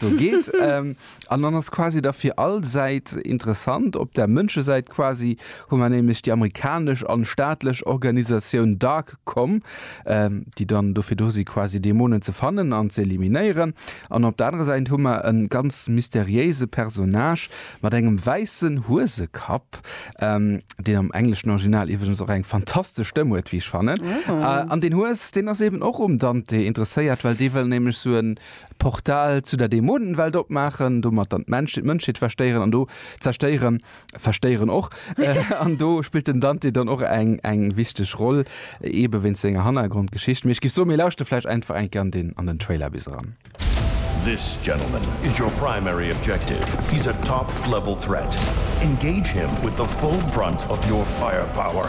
do geet. An dann ass quasi da fir all Säit interessant, op der Mënschesäit quasi hu mer nämlech déi amerikanesch an staatlech Organisatioun Darkcom, déi dann dofir do si quasi Dämonen ze fannen an ze eliminéieren. An op der anerer Säit hu mer e ganz mysteriéise Personnage mat engem wäissen Huesekapp, deen am engleschen Original iwwregens och eng fantastesch Stëmm huet, wéi ech fannen. An deen Hues, deen ass eeben och um Dante interesséiert, well dee wëll nämlech sou e D'Portal zu der Dämonenwelt opmaachen, domat dann d'Mënschheet verstéieren an do zerstéieren, verstéieren och. An do spillt den Dante dann och eng eng wichteg Roll, eebe wéinst senger Hannergrondgeschicht. Mee ech géif soen, mir lauschte vläicht einfach eng Kéier an den an den Trailer bis eran. This gentleman is your primary objective. He's a top level threat. Engage him with the full brunt of your firepower.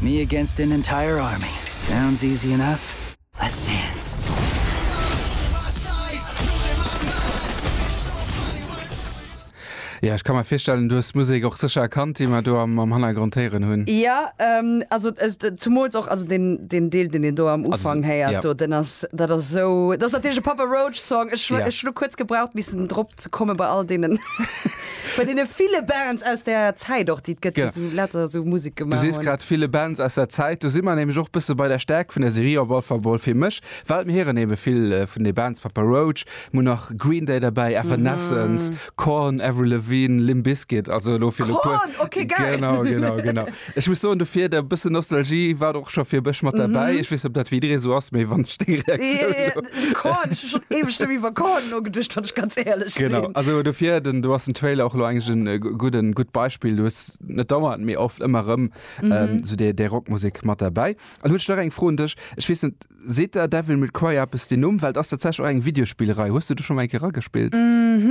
Me against an entire army sounds easy enough, let's dance! Jo, ech ka mer virstellen, du hues d'Musek och sécher erkannt, déi mer do am Hannergrond héieren hunn. Jo, also zumools och, also deen Deel, deen een do am Ufank héiert do, deen ass, dat ass esou, dat ass natierlech e Papa Roach Song. Ech hunn elo kuerz gebraucht missen drop ze komme bei all deenen. Bei deene ville Bands aus der Zäit och, déi et gëtt, déi sou later sou Musek gemaach hunn. Du sees grad ville Bands aus der Zäit. Do si mer nämlech och bësse bei der Stäerkt vun der Serie, op all Fall mol fir mech, well mir hieren ebe vill vun de Bands, Papa Roach, mol nach Green Day derbäi, Evanescence, Korn, Avril Lavigne, Limp Bizkit, also elo fir elo e puer. Korn, ok, geil! Genau, genau, genau. Ech muss soen dofir, e bëssen Nostalgie war och scho fir mech mat derbäi. Ech weess net, ob dat fir jidderee sou ass, mee wann ech deng Reaktioun do. Jo, jo, Korn, ech hu schonn éiweg net méi iwwer Korn nogeduecht, wann ech ganz éierlech sinn. Genau, also dofir, den, do ass den Trailer och elo eigentlech e gudden, gutt Beispill. Du hues net dauernd, mee oft ëmmer erëm esou déi Rockmusek mat derbäi. An hu ech nach eng Fro un dech, ech weess net, seet der Devil May Cry eppes den Numm? Well et ass tatsächlech och eng Videospillerei. Hues du do schonn mol eng Kéier eragespillt?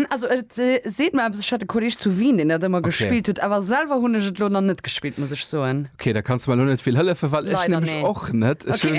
Also et seet mer eppes, ech hat e Kolleeg zu Wien deen dat ëmmer gespillt huet, awer selwer hunn ech et elo nach net gespillt, muss ech soen. Ok, da kanns de mer elo net vill hëllefen, well ech nämlech och net. Ech hu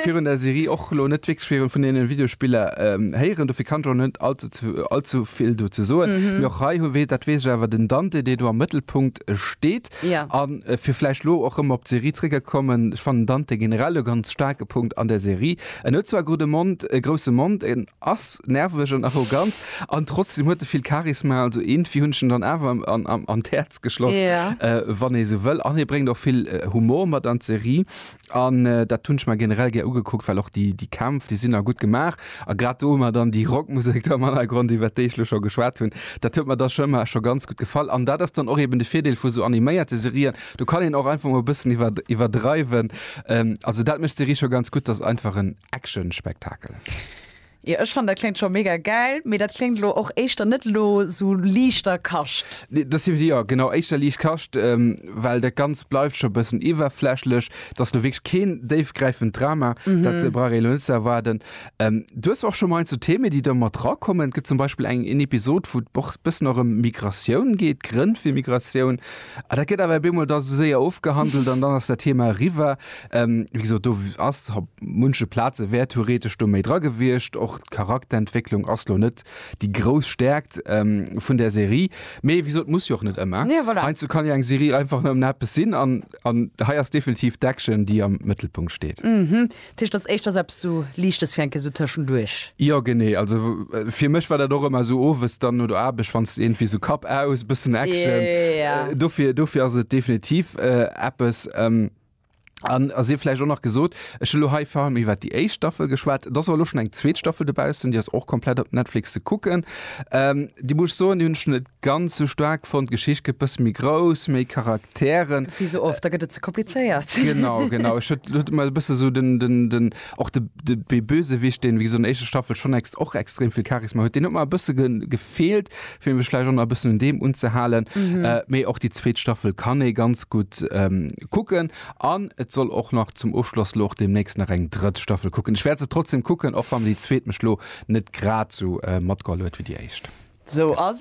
virun der Serie och elo net wierklech vill vun deene Videospiller héieren, dofir kann ech och net allzu vill dozou soen. Mee och hei, dat weess ech awer, den Dante dee do am Mëttelpunkt steet. Ja. A fir vläicht elo och rëm op d'Serie zréckgekommen, ech fannen Dante generell e ganz staarke Punkt an der Serie. En huet zwar gudde Mond, e grousse Mond, en ass nerveg an arrogant an trotzdem huet e vill Charisma. Also iergendwéi hunn ech en dann awer an, an, an d'Häerz geschloss, Ja. wann ee sou wëll. An hie bréngt och vill Humor mat an d'Serie. An dat hunn ech mer generell gär ugekuckt, well och déi Kämpf, déi sinn a gutt gemaach. A grad do hu mer dann déi Rockmusek do am Hannergrond, iwwert déi ech elo scho geschwat hunn, dat huet mer da scho ëmmer scho ganz gutt gefall. An dat ass dann och eben de Virdeel vu sou animéierte Serien, do kann een och einfach mol e bëssen iwwerdreiwen. Also dat mécht d'Serie scho ganz gutt, dat ass einfach en Action-Spektakel. Jo ech fannen dat kléngt scho mega gäil, mee dat kléngt elo och éischter net elo sou liichter Kascht. Nee dat si jo genau éischter liicht Kascht, well dat ganzt bleift scho e bëssen iwwerflächlech. Et ass elo wierklech keen déifgräifend Drama, dat brauch ee elo net ze erwaarden. Du hues och scho mol eent sou Themen déi do mat dra kommen, et gëtt zum Beispill eng een Episod wou et och e bëssen och ëm Migratioun geet, d'Grënn fir Migratioun, a dat gëtt awer op eemol da sou séier ofgehandelt an dann ass dat Thema eriwwer. Wéi gesot, do ass op munche Plaze wär theoretesch do méi dra gewiescht. Och d'Charakterentwécklung ass lo net déi grouss Stäerkt vun der Serie. Mee wéi gesot, muss jo och net ëmmer. Heiansdo kann jo eng Serie einfach nëmmen eppes sinn. An hei ass definitiv d'Action, déi am Mëttelpunkt steet. Dat heescht, et ass éischters eppes sou Liichtes fir eng Kéier sou tëschenduerch. Jo, genee. Also fir mech war dat och ëmmer sou owes dann no der Aarbecht, wann s de iergendwéi sou Kapp aus, e bëssen Action. Dofir ass et definitiv eppes. An et sief vläicht och nach gesot, ech hu lo hei vor allem iwwert déi éischt Staffel geschwat, et ass awer elo schonn eng zweet Staffel dobaussen, déi ass och komplett op Netflix ze kucken. Déi muss ech soen, déi hunn ech net ganz esou staark fonnt, d'Geschicht gëtt e bësse méi grouss, méi Charakteren. Wéi sou oft, da gëtt et ze komplizéiert. Genau, genau. Ech huet, huet mer e bësse sou den, den, den, och de, de, dee Bösewicht, deen, wéi gesot, an der éischter Staffel schonn ext, och extrem vill Charisma huet, deen huet mer e bësse ge, Feelt, fir mech vläicht och nach e bëssen un deem unzehalen. Mee och déi zweet Staffel kann ee ganz gutt kucken. An et soll och nach zum Ofschloss elo och deemnächst nach eng drëtt Staffel kucken. Ech wäert se trotzdem kucken, och wann déi zweet mech elo net grad esou matgeholl huet wéi déi éischt. Sou ass et.